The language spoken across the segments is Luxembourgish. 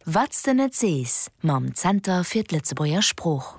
Wat s de net sees mam Zenter fir d'Lëtzebuerger Sprooch.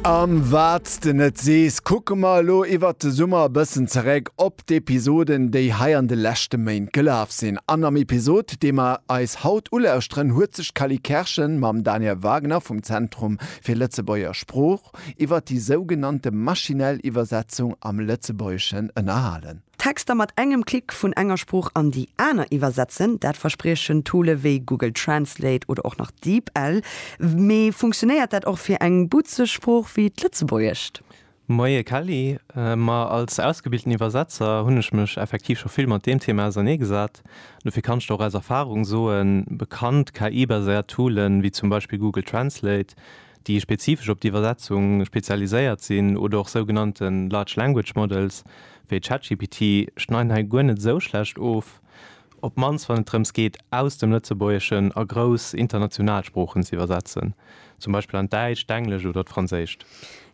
Am Wat s de net sees kucke mer elo iwwert de Summer e bëssen zeréck op d'Episoden, déi hei an de leschte Méint gelaf sinn. An am Episod, dee mer eis haut ulauschteren, huet sech d'Cally Kerschen mam Daniel Wagner vum Zentrum fir Lëtzebuerger Sprooch iwwert déi sougenannte maschinell Iwwersetzung am Lëtzebuergeschen ënnerhalen. Texter mat engem Klick vun enger Sprooch an déi aner iwwersetzen, dat verspriechen Toole wéi Google Translate oder och nach DeepL. Mee funktionéiert dat och fir eng butzeg Sprooch wéi d'Lëtzebuergescht? Moie Kelly, ma als ausgebilten Iwwersetzer hunn ech mech effektiv scho vill mat deem Thema auserneegesat. Dofir kann ech der och aus Erfarung soen, bekannt KI-baséiert Toole wéi zum Beispill Google Translate, déi spezifesch op d'Iwwersetzung spezialiséiert sinn, oder och sougenannte Large Language Models, wéi ChatGPT, schneiden hei guer net esou schlecht of, op d'mannst wann et drëms geet, aus dem Lëtzebuergeschen a grouss international Sproochen ze iwwersetzen, zum Beispill an d'Däitscht, d'Englescht oder d'Franséischt.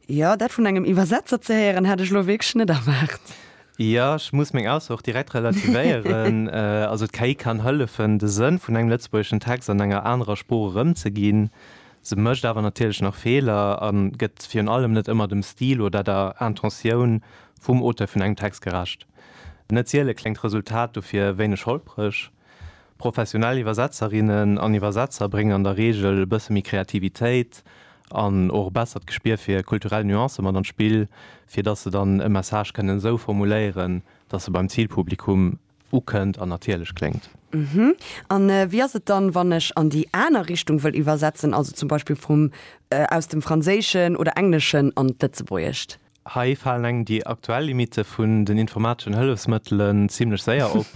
Jo, dat vun engem Iwwersetzer ze héieren, hat ech elo wierklech net erwaart. Jo, ech muss meng Ausso och direkt relativéieren. Also d'KI kann hëllefen, de Sënn vun engem lëtzebuergeschen Text an enger anerer Sprooch erëmzeginn. Se mécht awer natierlech nach Feeler a gëtt virun allem net ëmmer dem Stil oder der Intentioun vum Auteur vun engem Text gerecht. Net siele kléngt d'Resultat dofir wéineg holpreg. Professionell Iwwersetzerinnen an Iwwersetzer bréngen an der Reegel e bësse méi Kreativitéit an och e bessert Gespier fir kulturell Nuancë mat an d'Spill, fir datt se dann e Message kënnen esou formuléieren, datt e beim Zilpublikum. ukënnt an natierlech kléngt. Uhmm. An wéi ass et dann, wann ech an déi aner Richtung wëll iwwersetzen, also zum Beispill vum, aus dem Franséischen oder Engleschen an d'Lëtzebuergescht? Hei falen engem déi aktuell Limitte vun den informateschen Hëllefsmëttelen zimlech séier op.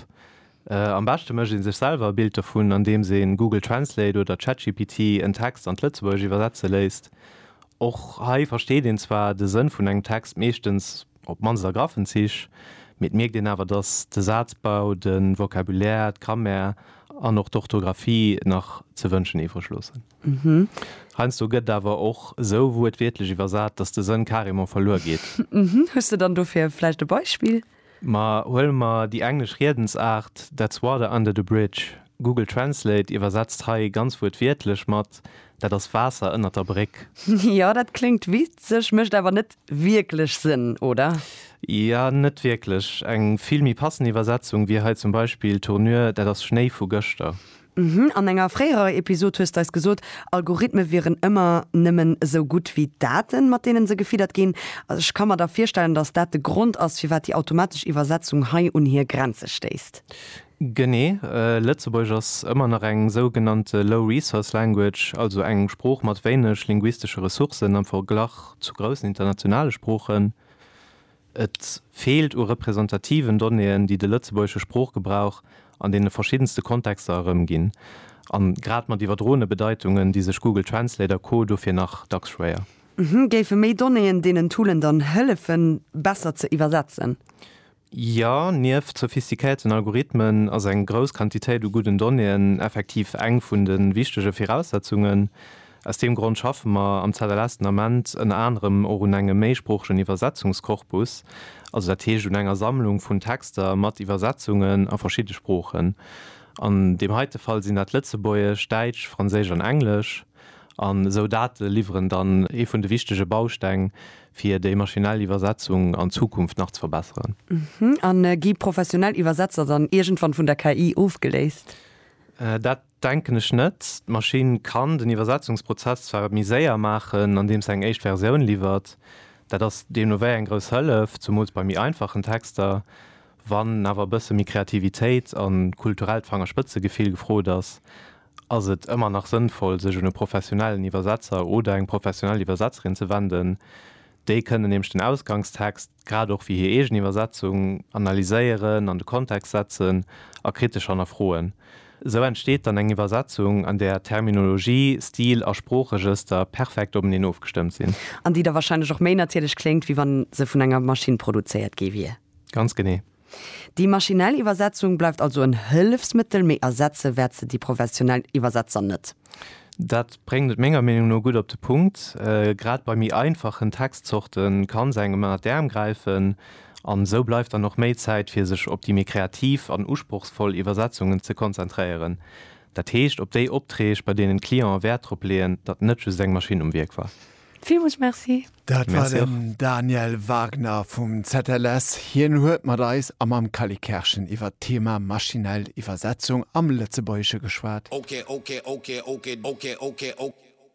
Am beschte mécht ee sech selwer e Bild dovun, andeems een Google Translate oder ChatGPT en Text an d'Lëtzebuergescht iwwersetze léisst. Och hei versteet een zwar de Sënn vun engem Text meeschtens. Op d'mannst a graffen Zich, mee et mierkt een awer, datt de Sazbau, de Vocabulaire, d'Grammaire an och d'Orthografie nach ze wënschen iwwreg loossen. Heiansdo gëtt awer och esou wuertwiertlech iwwersat, datt de Sënn carrément verluer geet. Hues de dann dofir vläicht e Beispill? Ma huele mer déi englesch Riedensaart That's water under the bridge. Google Translate iwwersetzt hei ganz wuertwiertlech mat Dat ass Waasser ënnert der Bréck. Jo, dat kléngt witzeg, mécht awer net wierklech Sënn, oder? Jo, net wierklech. Eng vill méi passend Iwwersetzung wier hei zum Beispill, Tournure, dat ass Schnéi vu gëschter. Mhm, an enger fréierer Episod hues d'eis gesot, Algorithme wieren ëmmer nëmmen esou gutt wéi d'Daten, mat deenen se gefiddert ginn. Ech ka mer da virstellen, dass dat de Grond ass, firwat déi automatesch Iwwersetzung hei un hir Grenze stéisst. Genee. Lëtzebuergesch ass ëmmer nach eng sougenannte low-resource language, also eng Sprooch mat wéineg linguistesche Ressourcen am Verglach zu groussen internationale Sproochen. Et feelt u representativen Donnéeën, déi de lëtzebuergesche Sproochgebrauch an deene verschiddenste Kontexter erëmginn, a grad mat iwwerdroene Bedeitungen di sech Google Translate a Co dofir nach dacks schwéier. Géife méi Donnéeën deenen Toolen dann hëllefen, besser ze iwwersetzen? Jo, nieft sophistiquéierten Algorithmen ass eng grouss Quantitéit u gudden Donnéeën effektiv eng vun de wichtege Viraussetzungen. Aus deem Grond schaffe mer am ZLS den Ament ënner anerem och un engem méisproochegen Iwwersetzungskorpus, also dat heescht un enger Sammlung vun Texter mat Iwwersetzungen a verschidde Sproochen. An deem heite Fall sinn dat Lëtzebuergesch, Däitsch, Franséisch an Englesch. An esou Date liwweren dann ee vun de wichtege Bausteng, fir déi maschinell Iwwersetzung an Zukunft nach ze verbesseren. A gi professionell Iwwersetzer dann iergendwann vun der KI ofgeléist? Dat denken ech net. D'Maschinn kann den Iwwersetzungsprozess zwar méi séier maachen, andeem se eng éischt Versioun liwwert. Dat ass deemno wéi eng grouss Hëllef, zumools bei méi einfachen Texter. Wann awer e bësse méi Kreativitéit a kulturellt Fangerspëtzegefill gefrot ass, ass et ëmmer nach sënnvoll, sech un e professionellen Iwwersetzer oder eng professionell Iwwersetzerin ze wenden. Déi kënnen nämlech den Ausgangstext, grad och wéi hir eegen Iwwersetzung, analyséieren, an de Kontext setzen a kritesch hannerfroen. Esou entsteet dann eng Iwwersetzung, an där Terminologie, Stil a Sproochregëster perfekt openeen ofgestëmmt sinn. An déi da warscheinlech och méi natierlech kléngt, wéi wa se vun enger Maschinn produzéiert gi wier. Ganz genee. Déi maschinell Iwwersetzung bleift also en Hëllefsmëttel, mee ersetze wäert se déi professionell Iwwersetzer net. Dat bréngt et menger Meenung no gutt op de Punkt. Grad bei méi einfachen Textzorte kann se engem ënner d'Äerm gräifen an esou bleift dann och méi Zäit, fir sech op déi méi kreativ an usprochsvoll Iwwersetzungen ze konzentréieren. Dat heescht, op déi Optreeg, bei deenen d'Clienten Wäert drop leeën, datt net just eng Maschinn um Wierk war. Villmools Merci. Dat war den Daniel Wagner vum ZLS. Hien huet mat eis a mam Kally Kerschen iwwer d'Thema maschinell Iwwersetzung am Lëtzebuergesche geschwat.